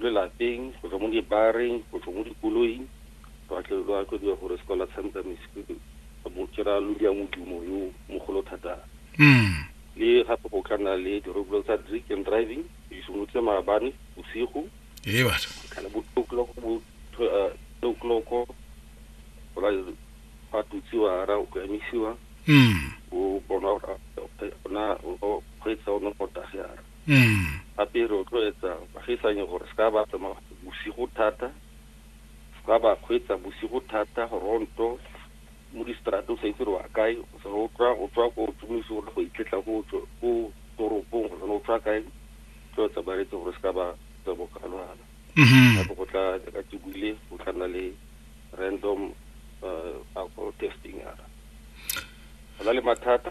lelapeng go tswa mo dibareng go tswa mo dikoloing lwa tle lwa tlo dira gore sekola tshameka mesipi mo kera lo dia modumo yo mogolo thata mm. le gape go ka nna le dirobolo tsa drink and driving di simolotse maabane bosigo ee batho kana bo two o'clock bo tw- eh, two o'clock go la fa tutsiwa ra go emisiwa mm. o bona gore a- a- ona o kgweetsa o ne go tagera mm. gape re rotloetsa bagisanye gore se ka ba tsamaya bosigo thata se ka ba kgweetsa bosigo thata ronto mo distrate o sa itse re wa kae o tswa o tswa ko tsomoise gore go itletla ko toropong gore o tswa kae tloetsa baretse gore se ka ba tsa bokalwana mm-hmm. gape go tla ka tebile go tla nna le random uh, alcohol testing yana go na le mathata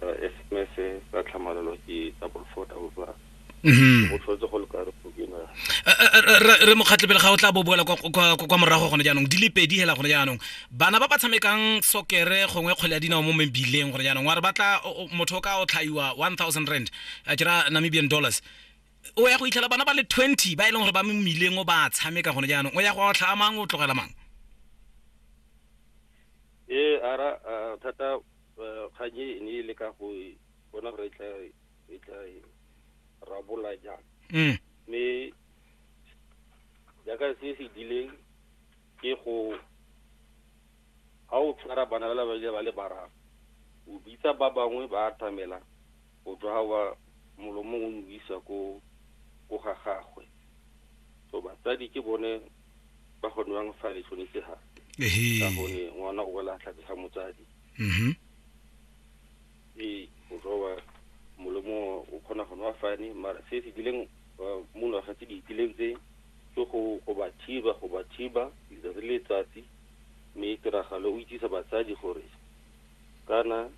sms tsa tlhamalalo ke double four double one mm-hmm. o tlhotse go le ka re gobina re mokgatlhe pele ga o tla bo boela kwa morago gone jaanong di le pedi hela gone jaanong bana ba ba tshamekang sokere gongwe kgwele ya dinao mo mebileng gone jaanong wa re batla motho o ka o tlhaiwa one thousand rand a kira namibian dollars o ya go itlhela bana ba le twenty ba e leng gore ba mo mmileng o ba tshameka gone jaanong o ya go otlha mang o tlogela mang ee ara thata Kgang e ne e le ka go bona gore e tla e rabola jang mm. mme jaaka se se dileng ke go ga o tshwara bana ba le ba le bararo o bitsa ba bangwe ba atamela O tswa wa molomong o nwisa ko ko ga gagwe so batsadi ke bone ba go nwang fa le tshwanetse ga ka gone ngwana o wela tlhake ga motsadi mm-hmm. ee o tswa wa molomo o kgona go nwa fane mara se se dileng uh, mo ngwaga tse di itileng tse ke go go ba thiba go ba thiba letsatsi le letsatsi mme tiragalo o itsisa batsadi gore kana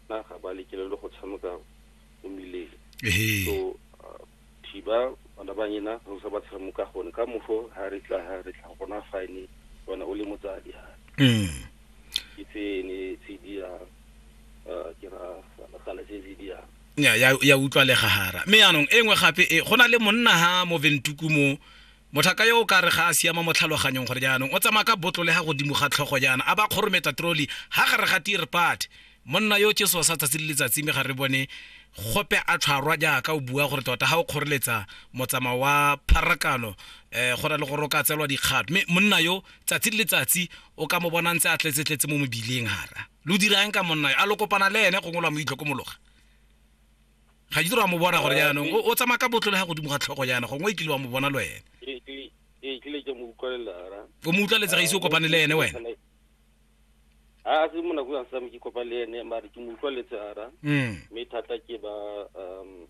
na ga ba lekelele go tshameka mo mmileng so uh, thiba bana ba nyena go sa ba tshamuka gone ka mofo ha re tla ha re tla gona fine bona o le motsadi ha mm. ke tse ne tse di ya uh, ke ra kana tse di ya ya ya utlwalega hara mme yaanong e nngwe gape e go na le monna ha mo ventuku mo Motlhaka yo o ka re ga a siama mo tlhaloganyong gore jaanong o tsamaya ka botlole ga godimo ga tlhogo jaana a ba kgorometa troli ga gare ga tir part monna yo tšeso sa tsatsi le letsatsi mme ga re bone gope a tlhwarwa jaaka o bua gore tota ga o kgoreletsa motsamao wa pharakano um go na le gore o ka tselwa dikgato mme monna yo tsatsi le letsatsi o ka mo bona ntse a tletsetletse mo mobileng gara lo dirang ka monna yo a lo kopana le ene gongwe lwa mo itlhokomologa ga di dira mo bona gore jaanong o- o tsamaya ka botlo le ga godimo ga tlhogo jaana gongwe e kile wa mo bona le wena Ke- ke- ke kile ke mo utlwelela ra o mo utlwaletse ga ise o kopane le ene wena a se mo nako yang same ke kopane le ene mare ke mo utlwaletse ara Mm. mme thata ke ba um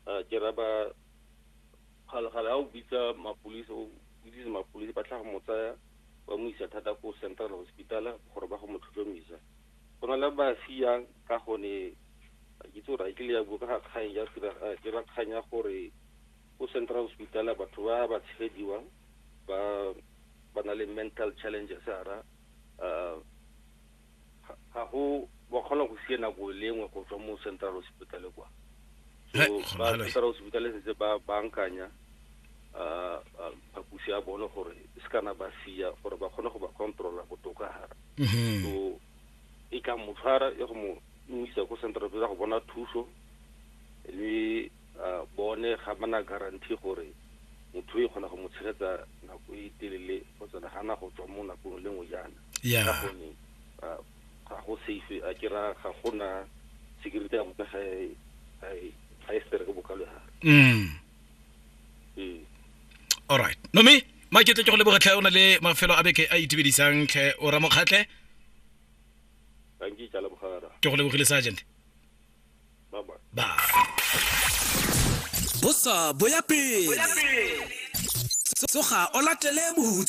ah, ke ra ba kgalagala ga o bitsa mapodisi o bitsise mapodisi ba tla go mo tsaya ba mo isa thata ko central hospital gore ba go mo tlhotlhomisa go na le ba siyang ka gone ga ke itse gore a kile ya bua ka ga kgang ya ke ra kgang ya gore ko central hospital batho ba ba tshegediwang ba ba na le mental challenges ara um ga go ba kgona go sie nako e lengwe go tswa mo central hospital kwa so ba central hospital setse ba bankanya um phapusi ya bone gore e se kana ba sia gore ba kgone go ba controla botoka gara mhm. so e ka mo tshwara e go mo mo isa ko central go bona thuso le bone ga bana guarantee gore motho e kgona go mo tshegetsa nako e telele go tsena gana go tswa mo nakong le nngwe jaana ka gone ga go safe a ke ra ga gona security ya motho ga e ga e stere ke bokalo ya gage mm. alright nomi maketle ke go leboga tlhe o na le mafelo a beke a itumedisang tlhe o ramokgatlhe ke go lebogile sergeant ba bosa boya pele tsoga o latele bohutso